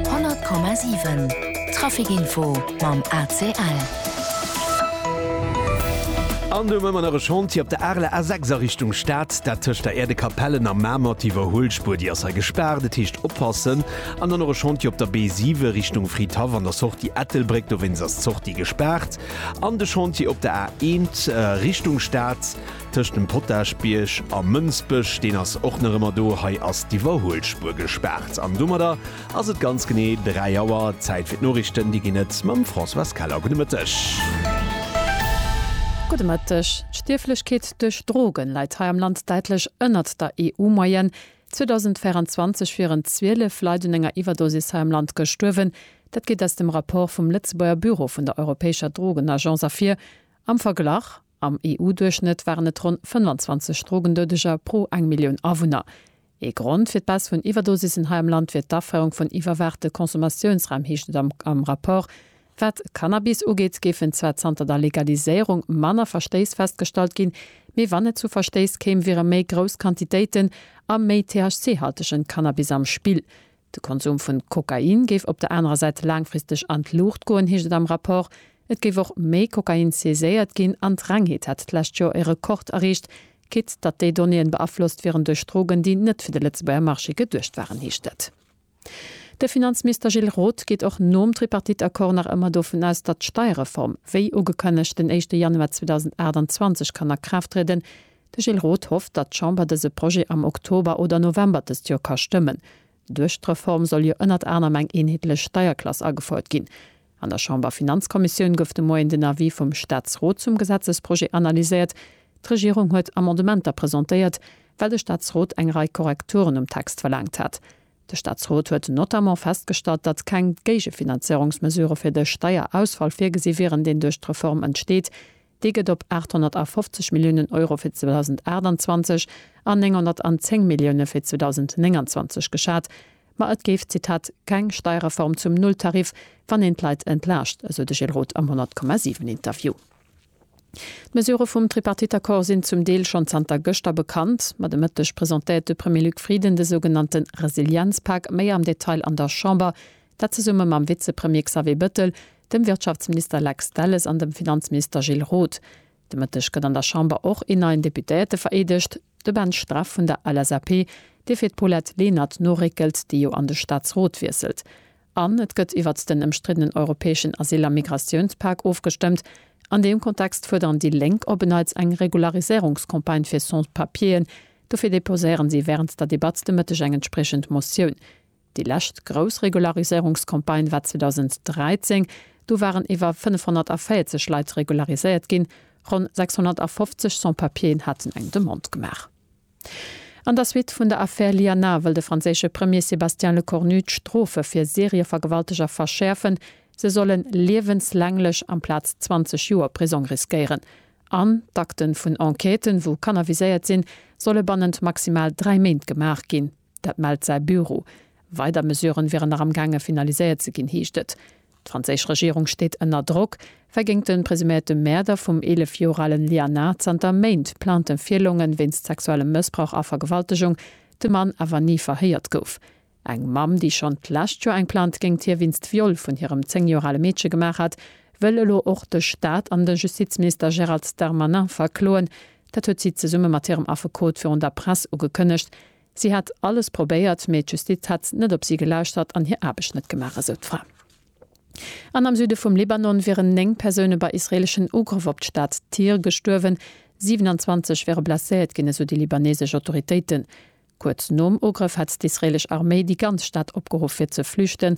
100,7 Trafic Info mam ACL. An do hu mer nach e Chantier op der Arler A6 a Richtung Stad, dat tëscht der Äerdekapellen a Mamer. D'Iwwerhuelspuer, déi ass hei gespaart, et heescht oppassen. An dann och e Chantier op der B7 Richtung Fridhaff an der Sortie Ettelbréck, dowéinst ass d'Sortie gespaart. An de Chantier op der A1 Richtung Stad, Tëscht dem Potagebierg a Mënsbech, deen ass och nach ëmmer do, hei ass d'Iwwerhuelspur gespaart. An domadder ass et ganz genee 3 Auer. Zäit fir d'Noriichten, déi ginn et mam Françoise Keller. Gudde Mëtteg. Gudde Mëtteg. D'Stierflechkeet duerch Drogen läit hei am Land däitlech ënnert der EU-Moyenne. 2024 wieren 12 Leit un enger Iwwerdosis hei am Land gestuerwen. Dat geet aus dem Rapport vum Lëtzebuerger Büro vun der europäescher Drogenagence ervir. Am Verglach Am EU-Duerchschnëtt waren et ronn 25 Drogendoudeger pro eng Millioun Awunner. Ee Grond fir d'Baisse vun Iwwerdosissen hei am Land wier d'Aféierung vun iwwerwaachte Consommatiounsräim, heescht et am Rapport. Wat Cannabis ugeet, géifen zwar zanter der Legaliséierung manner Verstéiss festgestallt ginn, mee wann et zu Verstéiss kéim, wiere méi grouss Quantitéiten a méi THC-haltegen Cannabis am Spill. De Konsum vu Kokain géif op der anerer Säit laangfristeg an d'Luucht goen, heescht et am Rapport. Et géif och méi Kokain saiséiert ginn an d'Rengheet hätt d'lescht Joer e Rekord erreecht, quitt datt déi Donnéeën beaflosst wieren duerch Drogen, déi net fir de Lëtzebuerger Marché geduecht waren, heescht et. De Finanzminister Gilles Roth geet och nom Tripartite-Accord nach ëmmer dovun aus, datt d'Steierreform, wéi ugekënnegt, den éischte Januar 2028 kann a Kraaft trieden. De Gilles Roth hofft, datt d'Chamber dëse Projet am Oktober oder November dëst Joer ka stëmmen. Duerch d'Reform soll jo ënnert anerem eng eenheetlech Steierklass agefouert ginn. An der Chamberfinanzkommissioun gouf de Moien den Avis vum Staatsrot zum Gesetzesprojet analyséiert. D'Regierung huet Amendementer presentéiert, well de Staatsrot eng Rei Korrekturen um Text verlaangt hat. De Staatsrot huet notamment festgestallt, datt keng Géigefinanzéierungsmesure fir de Steierausfall virgesi wieren, deen duerch d'Reform entsteet. Dee gëtt op 850 Milliounen Euro fir 2028 an 910 Millioune fir 2029 geschat. Ma et géif, Zitat, keng Steierreform zum Nulltarif, wann een d'Leit entlaascht, esou de Gilles Roth am 100,7 Interview. D'Mesurë vum Tripartite-Accord sinn zum Deel schonn zanter gëschter bekannt. Ma de Mëtteg presentéiert de Premier Luc Frieden de sougenannte Resilienzpak méi am Detail an der Chamber. Dat zesumme mam Vizepremier Xavier Bettel, dem Wirtschaftsminister Lex Delles an dem Finanzminister Gilles Roth. De Mëtteg gëtt an der Chamber och een neien Deputéierte vereedegt, de Ben Streff vun der LSAP, dee fir d'Paulette Lenert noréckelt, déi jo an de Staatsrot wiesselt. An et gëtt iwwert den ëmstriddenen europäeschen Asyl a Migratiounspak ofgestëmmt. An deem Kontext fuerderen déi Lénk op en Neits eng Regularisierungscampagne fir Sans-Papieren. Dofir deposéieren si wärend der Debatt de Mëtteg eng entspriechend Motioun. Déi lescht grouss Regulariséierungscampagne war 2013, do waren iwwer 540 Leit regulariséiert ginn, ronn 650 Sans-Papieren haten eng Demande gemaach. An der Suite vun der Affär Lianar wëll de franséische Premier Sébastien Lecornu d'Strofe fir Serievergewalteger verschäerfen, se solle liewenslänglech amplaz 20 Joer Prisong riskéieren an d'Akten vun Enquêten, wou Kanner viséiert sinn, solle bannent maximal dräi Méint gemaach ginn. Dat mellt säi Büro. Weider Mesuren wieren nach am gaange finaliséiert ze ginn, heescht et. D'franséisch Regierung steet ënner Drock, well géint de presuméierte Mäerder vum 11 Joer alen Lianard zanter Méint Plainten virlongen, wéinst sexuellem Mëssbrauch a Vergewaltegung, de Mann awer ni verhéiert gouf. Eng Mamm, déi schonn d'lescht Joer eng Plainte géint hie wéinst Viol vun hirem 10 Joer ale Meedche gemaach hat, wëll elo och de Staat an de Justizminister Gérald Darmanin verkloen, Dat huet si zesumme mat hirem Affekot virun der Press ugekënnegt. Si hätt alles probéiert, mee d'Justiz hätt net op si gelauschtert an hir Aarbecht net gemaach, esou d'Fra. An am Süde vum Libanon wieren 9 Persoune bei israeeleschen Ugrëff op d'Stad Tyr gestuerwen, 27 wiere blesséiert ginn, esou déi libaneesesch Autoritéiten. Kuerz nom Ugrëff hätt d'israeelesch Arméi déi ganz Stad opgeruff fir ze flüchten.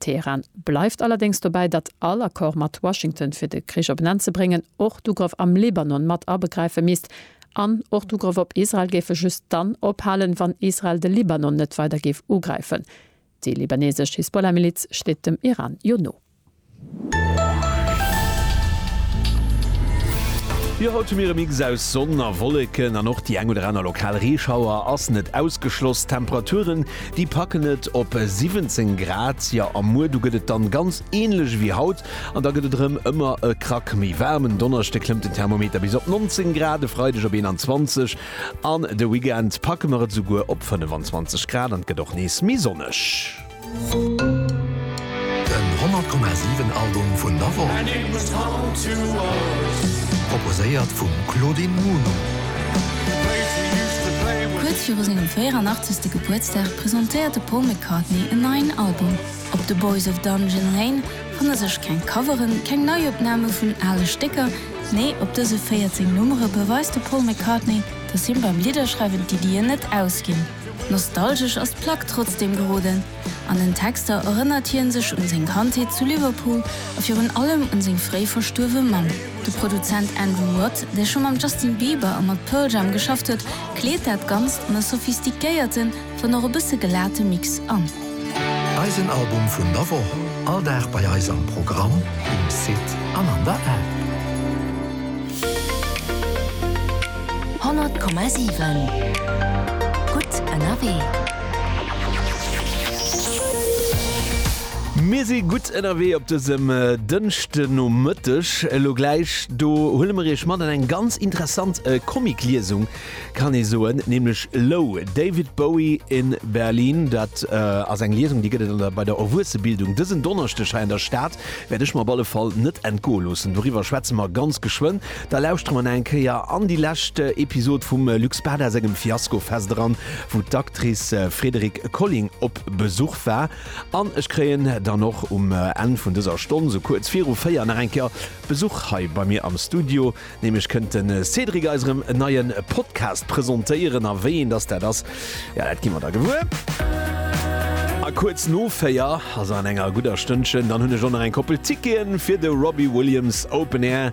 Teheran bleift allerdéngs dobäi, datt all Accord mat Washington, fir de Krich op en Enn ze bréngen, och d'Ugrëff am Libanon mat abegräife misst. An och d'Ugrëff op Israel géife just dann ophalen, wann Israel de Libanon net weider géif ugräifen. Déi libaneesesch Hisbollah-Miliz steet dem Iran jo no. Jo, haut hu mir e Mix aus Sonn a Wolleken an och déi eng oder aner lokal Reeschauer ass net ausgeschloss. D'Temperaturen Déi packen et op 17 Grad, jo a muer du gëtt et dann ganz ähnlech ewéi haut an da gëtt et erëm ëmmer e Krack méi waarm. En Donneschde klëmmt den Thermometer bis op 19 Grad, e Freideg op 21 an de Weekend packe mer et esouguer op 25 Grad an et gëtt och nees méi sonneg. Den 100,7 Album vun der Woch. Proposéiert vum Claudine Muno. Kuerz viru sengem 84. Gebuertsdag presentéiert de Paul McCartney en neien Album. Op The Boys of Dungeon Lane fanne sech keng Coveren, keng Neiopname vun ale Stécker, nee op dëse 14 Nummere beweist de Paul McCartney, dass him beim Lidderschreiwen d'Iddien net ausginn. Nostalgesch ass d'Plack trotzdeem geroden. An den Texter erënnert hie sech un seng Kandheet zu Liverpool a virun allem un seng fréi verstuerwe Mamm. De Produzent Andrew Watt, dee scho mam Justin Bieber a mat Pearl Jam geschafft huet, kleet dat Ganzt an e sophistiquéierten, wann och e bësse gelate Mix an. Eisen Album vun der Woch, all Dag bei eis am Programm, um Site an an der App. 100,7 gutt ënnerwee. Mir si gutt ënnerwee op dësem Dënschdenomëtteg. Elo gläich do huele mer Iech mat an eng ganz interessant Comic-Liesung, kann ee soen, nämlech Low, David Bowie in Berlin. Dat ass eng Liesung, déi gëtt et bei der Erwuessebildung dësen Donneschdeg hei an der Stad. Wäert ech mer op alle Fall net entgoe loossen. Doriwwer schwätze mer ganz geschwënn. Da lauschtere mer nach eng Kéier an déi lescht Episod vum Luc Bada sengem Fiasko-Fest eran, wou d'Actrice Frédérique Colling op Besuch war. An ech kréien dann och um Enn vun dëser Stonn, sou kuerz viru 4, nach eng Kéier Besuch hei bei mir am Studio. Nämlech kënnt de Cédric eis erëm en neie Podcast presentéieren. A wéi een dass dat ass, jo, dat gi mer da gewuer. A kuerz no 4, also an enger gudder Stënnchen, dann hunn ech och nach eng Koppel Ticketen fir de Robbie Williams Open Air.